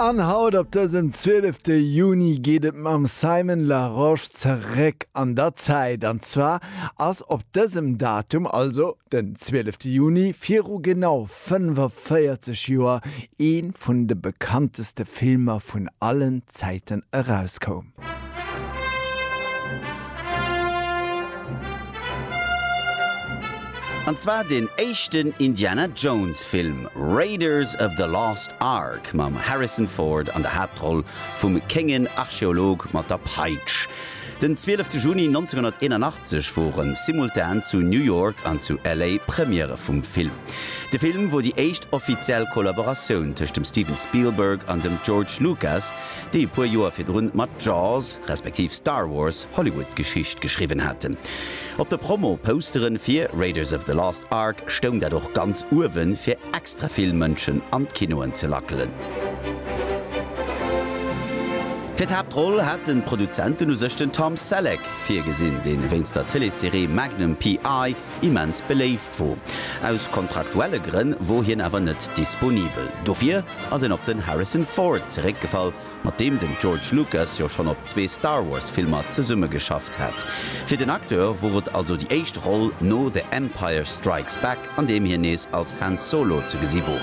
An haut op dësem 12 Juni geet et mam Simon Larosche zeréck an der Zäit. An zwar ass op dësem Datum, also den 12 Juni viru genau 45 Joer ee vun de bekannteste Filmer vun allen Zäiten erauskoum. An zwar deen éischten Indiana Jones Film, Raiders of the Lost Ark mam Harrison Ford an der Haaptroll vum kéngen Archeolog mat der Peitsch. Den 12 Juni 1981 woren simultan zu New York an zu LA Premierë vum Film. De Film wor déi éischt offiziell Kollaboratioun tëscht dem Steven Spielberg an dem George Lucas, déi e puer Joer virdrun mat Jaws, respektiv Star Wars, Hollywood Geschicht geschriwwen haten. Op de Promo-Poustere fir Raiders of the Lost Ark stoung dat och ganz uewen, fir extra vill Mënschen an d'Kinoen ze lackelen. Fir d'Haaptroll haten d'Produzenten u sech den Tom Selleck virgesinn, deen wéinst der Tëleesserie Magnum PI. immens beléift Vu aus kontraktuelle Grënn wor hien awer net disponibel. Dofir ass en op den Harrison Ford zeréckgefall, mat deem den George Lucas jo schonn op zwee Star Wars Filmer zesummegeschafft hat. Fir den Acteur wor et also déi éischt Roll no The Empire Strikes Back, an deem hien nees als Han Solo ze gesi wor.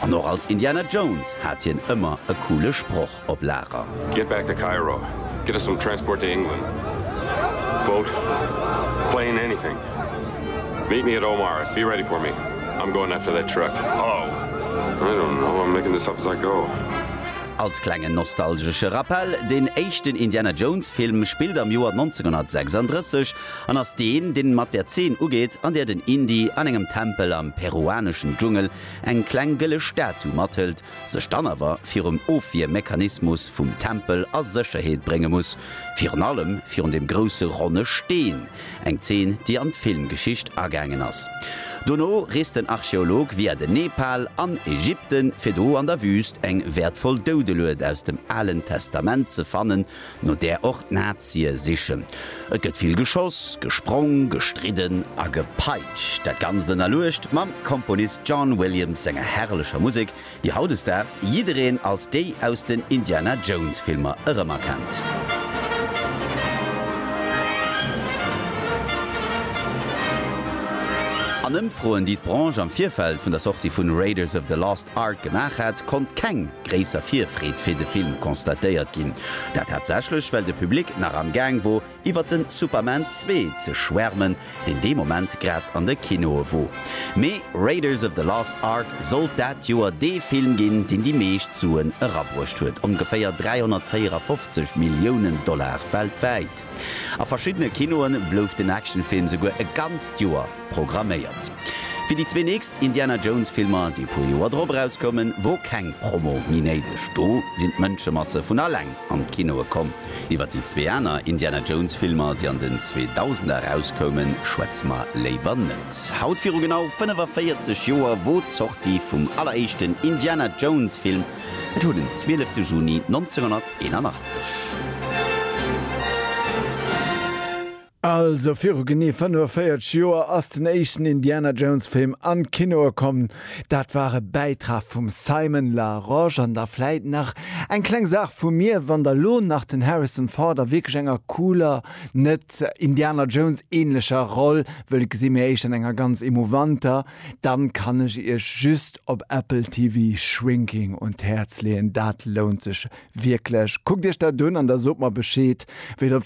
An och als Indiana Jones hat hien ëmmer e coole Sproch. op Lager. Get back to Cairo, get us some transport to England, boat, plane, anything. Meet me at Omar's, be ready for me, I'm going after that truck. Hello! I don't know, I'm making this up as I go. Als klengen nostalgesche Rappell, Deen éischten Indiana Jones Film spillt am Joer 1936 an ass deen, deen mat der Zeen ugeet, an där den Indy an engem Tempel am peruaneschen Dschungel eng kleng gëlle Statu mathëlt, sech dann awer virum Ofwiermechanismus vum Tempel a Sécherheet brénge muss, virun allem virun dem grousse ronne Steen, eng Zeen, déi an d'Filmgeschicht agaangen ass. Dono reest den Archeolog via den Nepal an Ägypten, fir do an der Wüst eng wäertvoll Doudelued aus dem Alen Testament ze fannen, no där och d'Nazie sichen. Et gëtt vill geschoss, gesprong, gestridden a gepeitscht. Dat Ganzt ënnerluecht mam Komponist John Williams senger herrlecher Musek, déi hautdesdaags jiddereen als déi aus den Indiana Jones Filmer erëmerkennt. An Ëmfroen, déi d'Branche am Virfeld vun der Sortie vun Raiders of the Lost Ark gemaach hat, konnt keng gréisser Virfreed fir de Film constatéiert ginn. Dat haaptsächlech well de Public nach am Gaang wor iwwert den Superman 2 ze schwärmen, deen dee Moment grad an de Kinoe wor. Mee Raiders of the Lost Ark sollt dat Joer dee Film ginn, deen déi meescht Suen erabruecht huet, ongeféier 354 Milliounen Dollar weltwäit. A verschiddene Kinoe blouf den Actionfilm souguer e ganzt Joer. programméiert. Fir déi zwee nächst Indiana Jones Filmer, déi e puer Joer drop erauskoumen, wor keng Promo méi néideg. Do sinn d'Mënschemasse vun alleng an d'Kinoe komm. Iwwer déi zwee aner Indiana Jones Filmer, déi an den Zweedausender erauskoumen, schwätze mer léiwer net. Haut viru genau 45 Joer wor d'Sortie vum alleréischten Indiana Jones Film, et wor den 12 Juni 1981. Also viru genee 45 Joer ass den éischten Indiana Jones Film an d'Kinoe komm. Dat war e Bäitrag vum Simon Larosche an da vläit nach eng kleng Saach vu mir, wann der lo nach den Harrison Ford a wierklech enger cooler, net Indiana Jones ähnlecher Roll wëllt gesi mee éischt an enger ganz emouvanter, dann kann ech iech just op Apple TV Shrinking un d'Häerz leeën. Dat lount sech wierklech. Kuckt iech dat un an da sot mer Bescheed wéi der.